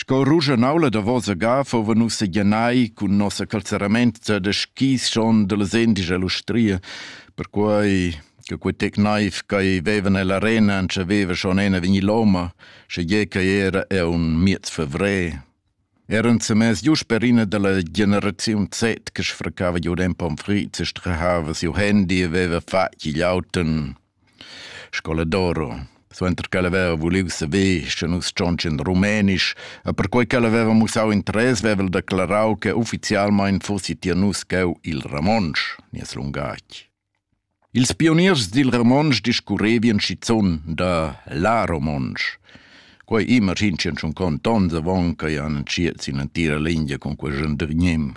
Sco ruschanaula davosa ga fuvan nus seglianai cun nossa calzeramente da skis schon dallas endisch ell'ustria, perquei che quei tec naiv ch'ei vevan ell'arena entschaveva schon en a vegnir loma, schegie ch'ei era aunc miez favrer. Era ensemens giu sper ina dalla generaziun Z che sfraccava giu en pomfrit e strahava siu handy e veva fatg igl auto. Scoladoro. Suenter ch'el haveva vuliu saver, sche nus tschontschin rumenisch, e perquei ch'el haveva mussau interess, veva el declarau che ufficialmein fossi tier nus cheu il romontsch, nies lungatg. Ils pioniers dil romontsch discurrevien schizun da la romontsch. Quei imagin tschien schon cont onns avon che han entschiet sin l'entira lingia cun quei gendergnim.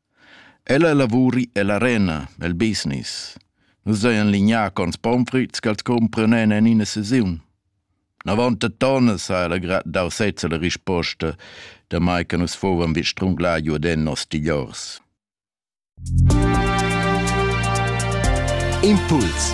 Ella lavuri ella arena, el business. Nus hajan lignà cons pomfrüts ch'els cumpranen en ina sesiun. Navontettonas ha ella grad dau sezza la risposta, damai che nus fuvan vi strunglà giu den nos tigliors. Impuls